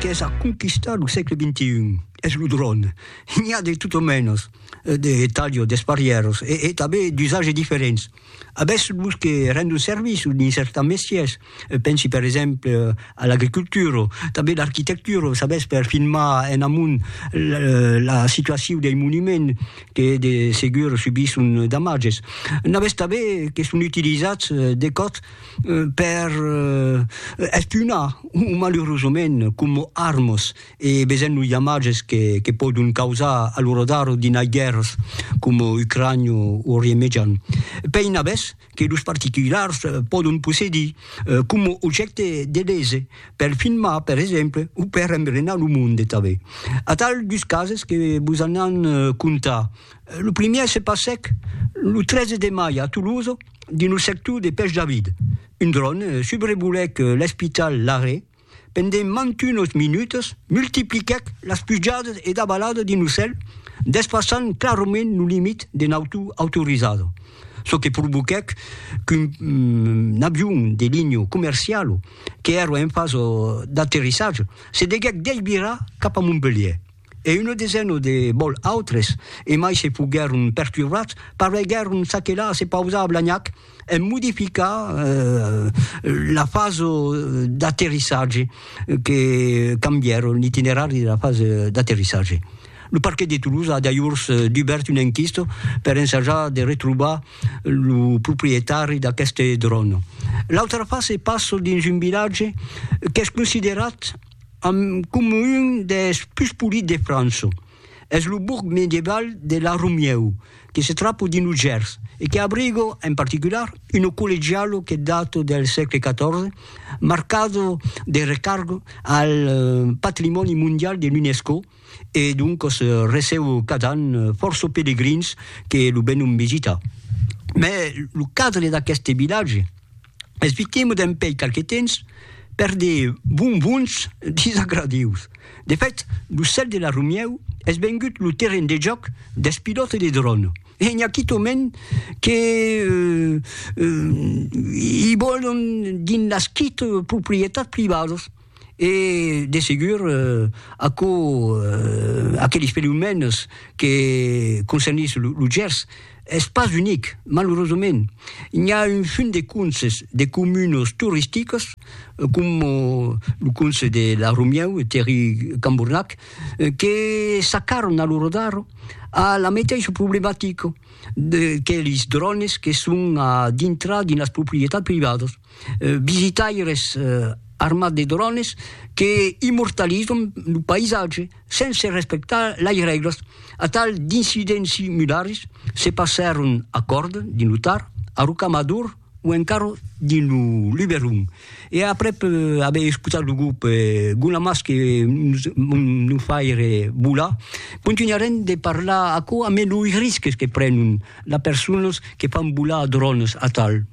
Qu'es a conquistar lo sègle xxi es lo dròn. N'i a de tot o mènos, de talho, d'esparièros e tanben d'usage diferents. Avètz los que rendon servici dins certans mestièrs, pensi per exemple a l'agricultura, tanben l'arquitectura, s'avètz per filmar en amont la situacion dei monuments que de segur subisson damatges. N'avètz tanben que son utilizats de còps, per espunar o malurosament com armas e besent los damatges que, que pòdon causar a lo radar d'inai guèrras com Ucrània o Orient Mejan. Pein avès que los particulars pòdon possedir com objècte de lese per filmar, per exemple, o per embrenar lo monde tanben. Atal dus cases que vos anàn contar. Lo primièr se passèc lo 13 de mai a Toulouse, Dins lo sector de Pech David, un dron subrevolèc l'espital Laré pendent mantunos minutas, multipliquèc las pujadas e davaladas dins lo cèl, despassant clarament lo limit de nautor autorizada, çò que provoquèc qu'un avion de linha comerciala, qu'èra en fasa d'aterrissatge, se deguèc desvirar cap a Montpelhièr. e una desena de bòl autres, e mai se foguèron perturbats, pareguèron s'aquelar a se pausar a Blagnac en modificar la fasa d'aterrissatge, que cambièron l'itinerari de la fasa d'aterrissatge. Lo parquet de Toulouse a dajors dubèrt una enquista per ensajar de retrobar lo proprietari d'aqueste dròn. L'autra fasa passa dins un vilatge qu'es considerat, amb coma un des pus polits de França. Es lo borg medieval de La Romieu, que se trapa dins lo Gers e que abriga, en particular, una collegiala que data del sègle XIV, marcada de recarga al patrimòni mondial de l'UNESCO e doncas receba cada an fòrça pelegrins que lo venon visitar. Mai lo cadre d'aqueste vilatge, Esvitemo dempèi qualque temps per de bonbons disagradius. De fèt, lo cèl de la Romièu es vengut lo terren de jòc dels pilòtes de dròn e n'i a quitòment que i vòlon dins las quite proprietats privadas. e de segur aquò aqueles fenomèns que concernís lo Gers es pas unic, malurosament. N'i a un fum de conses de comunas toristicas coma lo conse de La Romieu e Terri Cambornac que s'acarran a lo rodar a la meteissa problematica de que lis drònes que son a dintrar dins las proprietats privadas. visitaires armats de drones que immortalizan lo païsatge sense respectar las règlas. Atal d'incidents similars se passèron a Còrd, dins lo Tar, a Rocamador o encara dins lo Luberon. E aprèp aver escotat lo grop Guna Mas que nos fa aire volar, contunharem de parlar aquò ambe los risques que prenon las personas que fan volar drones atal.